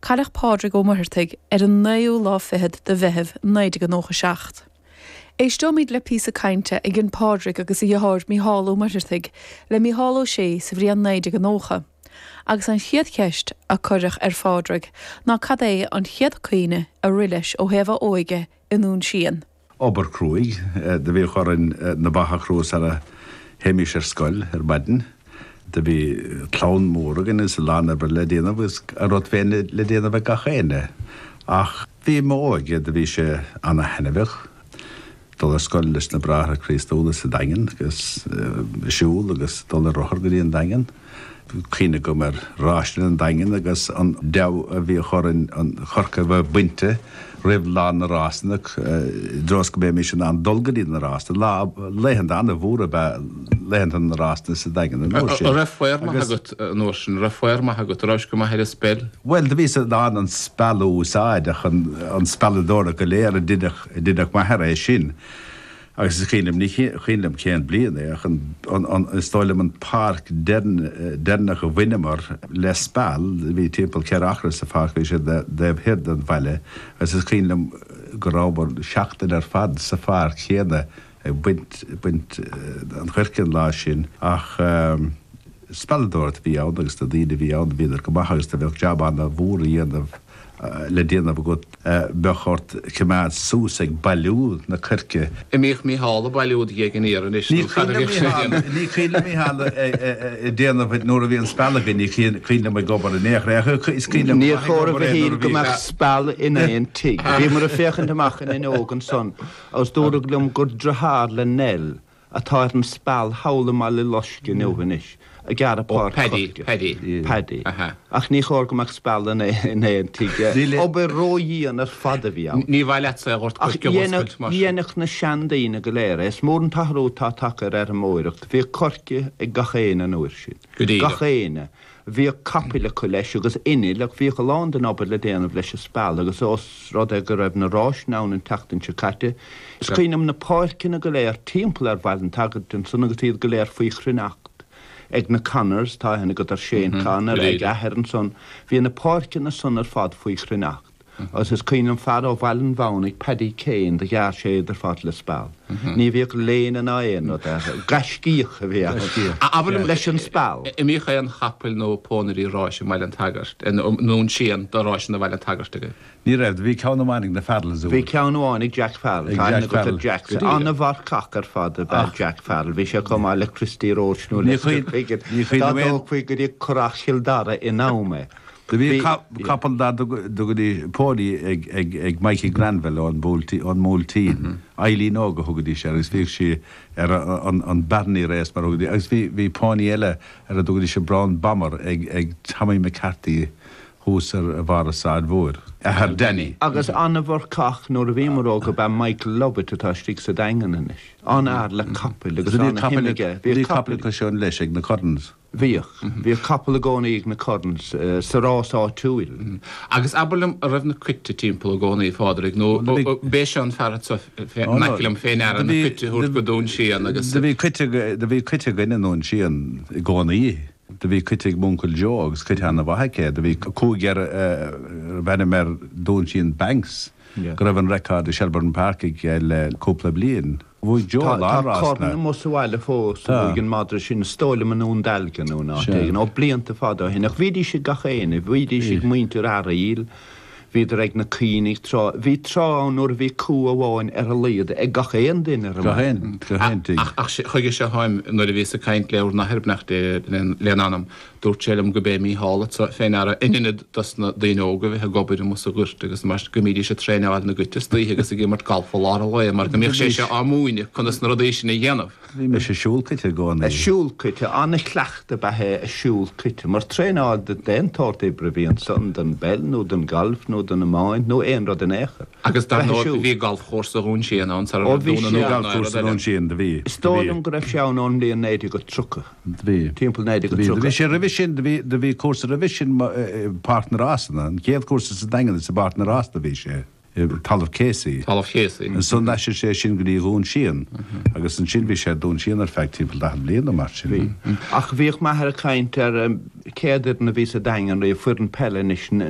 Cailleadh Pádraig Ó Muirtheartaigh ar an naoú lá fichead de Mheitheamh 1997. Éisteoimid le píosa cainte a dhein Pádraig agus a dheartháir Micheál Ó Muirtheartaigh le Micheál Ó Sé sa bhliain 1990 agus an chéad cheist a cuireadh ar Phádraig ná cad é an chéad chuimhne a rith leis ó thaobh a óige i nDún Síon. obair cruaidh do bhíodh orainn na ba a chrú sar a théimís ar scoil ar maidin. Do bhí clann mór againn agus a lán oibre le déanamh agus a rud féin le déanamh ag gach éinne. Ach im óige do bhí sé ana thaithneamhach dul ar scoil leis na Bráithre Críostúla sa Daingean agus siúl agus dul ar rothar go dtí an Daingean. Is cuimhin liom go maith ráiseanna an Daingin agus an deabhadh a bhíodh orainn an coirce a bheith bainte roimh lá na ráiseanna i dtreo is go mbeimis in ann dul go dtí na ráiseanna. Lá, laethanta an-mhór ab ea laethanta na ráiseanna sa Daingean an uair sin. Raibh faobhar maith agat an uair sin? Raibh faobhar maith agat? Rabhais go maith ar an speil? Bhuel, do bhíos in ann an speal a úsáid ach an spealadóireacht go léir dheineadh m'athair é sin. Agus is cuimhin liom, ní cuimhin liom cén bliain é, ach is dóigh liom an pháirc deireanach a bhaineamar le speal, bhí timpeall ceithre acra sa pháirc, bhí sé taobh thoir den bhaile, agus is cuimhin liom go rabhamar seachtain ar fad sa pháirc chéanna ag baint, baint an choirce an lá sin ach spealadóireacht a bhí ann agus na daoine a bhí ann, bhíodar go maith agus do bheadh jab ana mhór a dhéanamh. le déanamh agat, bheadh ort coimeád suas ag bailiú na coirce. An mbíodh Mícheál ag bailiú do ghéag an fhéir anois nó cad a bhíodh sé ag déanamh? Ní cuimhin liom Mícheál a déanamh nuair a bhí an speal againn, ní cuimhin liom ag obair in aon chor é ach is cuimhin liom go Níor maith ag chóir a obair é nuair a shíl go bhí mbeadh speal in aon tigh. Bhíomar ag féachaint amach an fhuinneog ansan agus dúradh liom gur deartháir le Nell atá ar an Speal thall i mBaile Loisc inniu anois, ag gearradh páirc choirce. Paddy, Paddy. Paddy, Ach ní chóir go mbeadh speal in aon tigh. Níl, obair ró-dhian ar fad a bhí ann. Ní mhaith leatsa a dhort go sciobóil scoilt mar sin. Ach dheinfeadh na sean daoine go léir é. Is mór an t-athrú atá tagtha ar fheirmeoireacht. Bhíodh coirce ag gach éinne an uair sin. Go díreach. Gach éinne. Bhíodh capaill acu, leis, agus innill, ach bhíodh a lán den obair le déanamh leis an speal, agus ós rud é go raibh na ráiseanna ann an tseachtain seo caite, is cuimhin liom na páirceanna go léir timpeall ar Bhaile an tSagairt ansan agus iad go léir faoi chruithneacht ag na Connors, tá aithne agat, ar Shane Connor, ag a athair ansan, bhí na páirceanna san ar fad faoi chruithneacht. Agus is cuimhin liom fear ó Bhaile an Mhaonaigh, Paddy Kane, do ghearr sé iad ar fad le speal. Ní bhíodh léine ná aon rud air. Gaiscíoch a bhí ann. a bhí ann leis an speal. An mbíodh aon chapaill nó pónaithe ráis i mBaile an tSagairt, nó i nDún Síon do ráiseanna Bhaile an tSagairt aige. Ní raibh. Do bhí ceann amháin ag na Farrells, an. Bhí ceann amháin ag Jack Farrell. Ag Jack Farrell. Jack. An-mharcach ar fad ab ea Jack Farrell. Bhí sé chomh maith le Christy Roche nó le Sir Feagan. Ní cuimhin liom aon. Dá dtógfaí go dtí Currach Chill Dara in am é. Do bhí capall dá dtugtaí póiní ag Mikey Granville ón mBuailtín, Eileen Óg a thugaidís air, agus bhíodh sé ar an Barony Race mar a thugaidís, agus bhí póiní eile ar a dtugaidís an Brown Bomber ag Tommy McCarthy thuas ar bharr an Sráid Mhór, athair Danny. Agus an-mharcach nuair a bhíomar óg ab ea Michael Lovett atá istigh sa Daingean anois, an-fhear le capaill agus an-shuim aige, bhíodh capaill. Do bhí capaill acu sin leis ag na Currans. Bhíodh. Bhíodh capall i gcónaí ag na Currans sa rás áitiúil. Agus abair liom, an raibh na coite timpeall i gcónaí, a Phádraig, nó ab é seo an fear anseo in aice liom fé ndear na coite a thabhairt go Dún Síon agus. Do bhí coite, do bhí coite againn i nDún Síon i gcónaí. Do bhí coite ag m'uncail Joe agus coite an-mhaith aige. Do bhí cú aige a raibh ainm air Dún Síon Banks go raibh an record i Shelbourne Park aige le cúpla bliain. Bhuaigh Joe Tá Larbh as corn na. amuigh sa bhaile fós a Tá. bhuaigh an madra sin, is dóigh liom i nDún Dealgan nó in áit Sea. éigin, ó, blianta fada ó shin. Ach bhídís ag gach éinne, bhídís Bhí. ag muintir Fhearaíl, bhíodar ag na caoinigh tráth, bhí tráth ann nuair a bhí cú amháin ar a laghad ag gach aon duine ar an Gach aon, mbaile. gach aon tigh. Ach, ach, chuige seo atáim, nuair a bhíos ag caint le bhur n-athair, beannacht Dé lena anam. Dúirt sé liom gurb é Mícheál atá fé ndeara in inead dos na daoine óga bheith ag obair amuigh sa ghort agus mar go mbídís ag traenáil na gcuite istoíche agus ag imirt galf i lár an lae mar go mbíodh sé seo á múineadh conas na rudaí sin a dhéanamh. Bhí mise ag siúl cuite i gcónaí. Ag siúl cuite, an-chleachtadh ab ea é ag siúl cuite mar traenáil do d'aon tsórt oibre a bhí ansan, don bpeil nó don galf nó don iomáint nó aon rud in aon chor. Agus dar ndóigh bhí galfchúrsa Dhún Síon ann sara raibh Dún an Óir ná aon rud eile ann. Is dóigh liom go raibh sé ann ón mbliain 1930. Bhí. timpeall 1930. Bhí sé roimhe sin, do bhí cúrsa roimhe sin i bPáirc na Rásanna, an chéad chúrsa sa Daingean is i bPáirc na Rásanna a bhí sé, i dtalamh Casey. Talamh Casey. Ansan d'aistrigh sé sin go dtí Dún Síon agus ansin bhí sé i nDún Síon ar feadh timpeall daichead bliain nó mar sin. Bhí. Ach bhíodh m'athair ag caint ar an chéad fhoireann a bhí sa Daingean, bhí foireann peile anois, na.